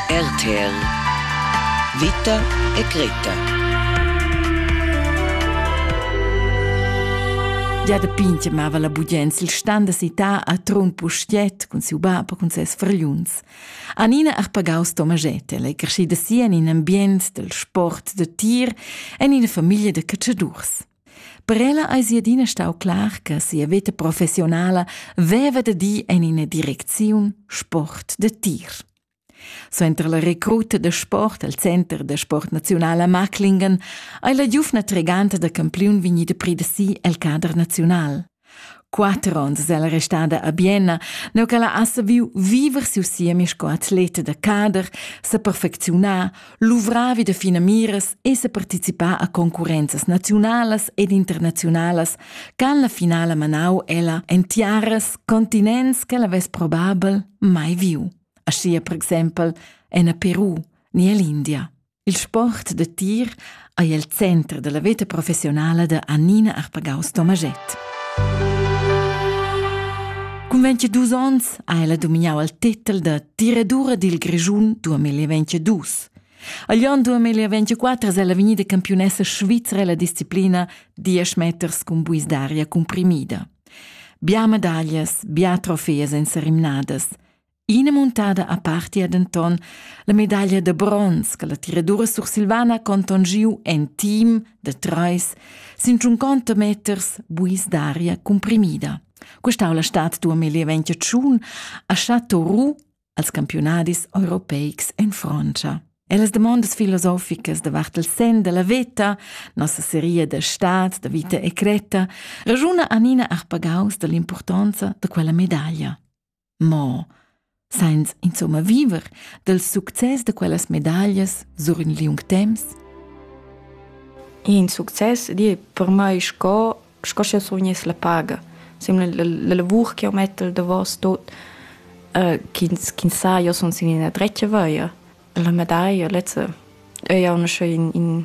RTL Vita e Greta. Gia da pintg mava la bugens il stand da cità a Trun Pustiet cun siu bab e cun ses fragliuns. Anina Arpagaus Tomaget è crescida si en in ambient del sport da tir en ina famiglia da cacciadurs. Per ella eis ei adina stau clar che sia veta professionala veva da dir en ina direcziun sport da tir. Suenter la recruta da sport al Center da sport nazional a Marklingen ei la giuvna treganta da campiun vegnida pridasi el cader nazional. Quatter onns ella restada a Bienna, neu ch'ella ha saviu viver siu siemi sco atleta da cader, sa perfecziunar, luvrar vi da finamiras e sa participar a concurrenzas naziunalas ed internaziunalas ch'han la finala manau ella en tiaras continents ch'ella vess probabel mai viu, aschia per exempel en a Peru ni ell'India. Il sport da tir ei el center dalla veta professionala da Annina Arpagaus-Tomaschett. Cun 22 onns ha ella domignau il tetel da tiradura dil Grischun 2022. Agl onn 2024 è ella vegnida campiunessa svizra la disciplina 10 meters cun buis d'aria cumprimida. Bia medaglias, bia trofee senza rimnadas. Ina muntada apartia denton la medaglia da bronz che la tiradura sursilvana conton giu en team da treis sin tschunconta meters buis d'aria cumprimida. Questa la stat duamilli ventotschun a Chateau Roux als campionadis europeics en Francia. E las demandas filosoficas davart il sen della veta, nossa seria da stat, da vita e cretta, ragiuna Anina Arpagaus dall'impurtonza da quella medaglia. Mo sainz insomma viver dal success da quellas medaglias sur ün liung temps? In success di per mai sco sco sch'eu survgness la paga. Simla la, la lavur ch'eu metto il davos tot, uh, chi'ns chi'ns sa, io sun sin üna dretga via. La medaglia lezza ei auncha in, in,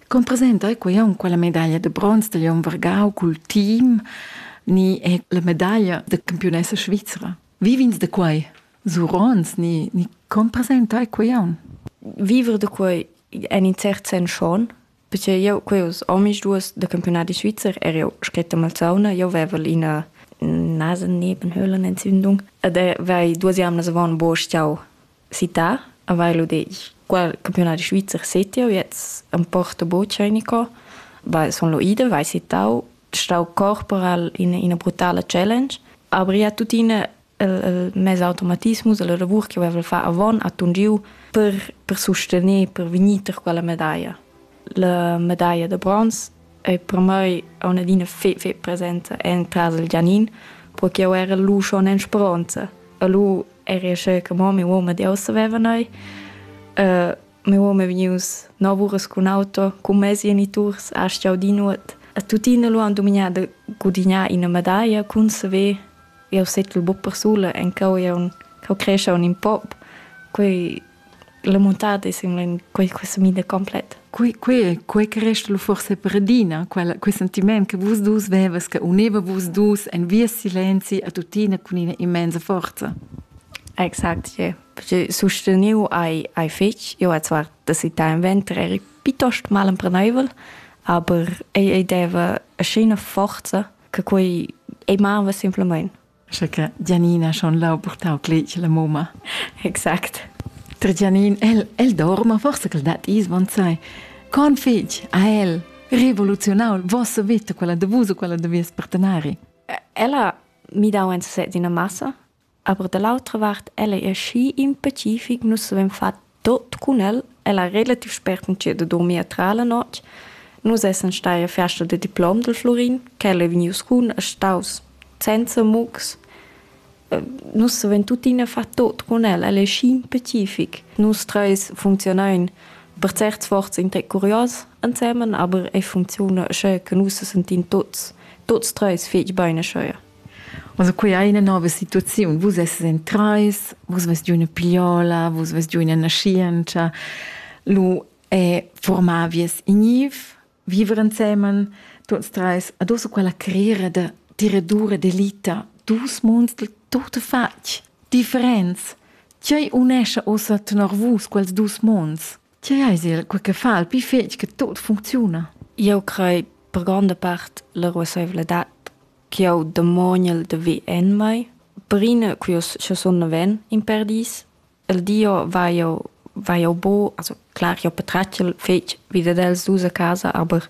Con presenta ei quei aunc quella medaglia de bronz dagl onn vargau cul team ni è la medaglia de campionessa svizra? Vivins de quei? Surons ni, ni con presenta ei quei aunc? Vivere de quei en in cert sen schon, perché io queus omis duas de campionati svizzer er io scretta malzauna, io vevel ina Nasen nebenhöhlen Entzündung ed er weil duas jamnas avon bo stiau Cità a vai lu detg. Qua il campiunadi svizzer settiu, jetzt am Porto Bocanico, vai sun lu ida, vai sittau, stau corporal in ina brutala challenge, aber ja tuttina il, il mes automatismus e la lavur che veva far avon atun giu per, per sustener, per vegnir ter quella medaglia. La medaglia da bronz E per mei ha una adina fe fetg presenta entras il Gianin, pro che jau era lu schon en speronza. E lu eri asceu che mo mia uoma di ussa veva neu. mia uoma è vegnius nov uras cun auto, cun mes geniturs, asch jau di nuot. E tuttina lu han dumignà da gudignar ina medaglia cun saver jau settel buc persula, en cau jau, cau creschau in pop. Quei La muntada es simplamaing quai questa mida complet. Quei, quei, quei che resta lu forse per adina, quel, quel sentiment che vus dus vevas, che uneva vus dus en via silenzi a tuttina con ina immensa forza. Exakt, ja. Perché sosteniu ai, ai fetg, io ho zwar das Ital im Winter eri piuttosto mal impreneibel, aber ei, ei deva eine schöne Forza, che quei ei mava simplemente. Sche che Gianina schon lau purtau cletg la mumma. Exact. Ter Gianin, el, el dorma, forse che dat is bonsai. Con fig, a el, revoluzionau vosso vita, quella de vus o quella de vies partenari. Ella mi dau en sesez ina massa, aber dall'altra vart, ella è schi impecific, nus avem fat Tot cun el ella relativ spert entschet a durmir tra la notg. Nus essan stai a fiasta da diplom del Florin, quel ei vegnius cun e staus senza mugs. Nus savein tuttina far tot cun el, el ei schi specific. Nus treis funzionein per certs sforzs in tec curios ensemen, aber ei funcziuna sche che nus sesentin tots, tots treis fetg bein aschia. Also quei ei ina nova situaziun. Vus esses en trais, vus vest giu ina pigliola, vus vest giu ina naschientscha. Lu è formavies in niv, viver ensemen, tuts treis. Adosso quella carriera da tiradura d'elita, dus monds del tutto fatg, differents. Tgei unescha ossa tenor vus quels dus monds? Tgei eis il quei che fa il pli fetg che tot funcziuna? Eu crei per gronda part la ruasseivladad ch'eu demoniel da ver en mai. Prima che sche sun naven in perdis, il Dio va jo va jo bo, also klar, jo patratgel fetg vi dad els dus a casa, aber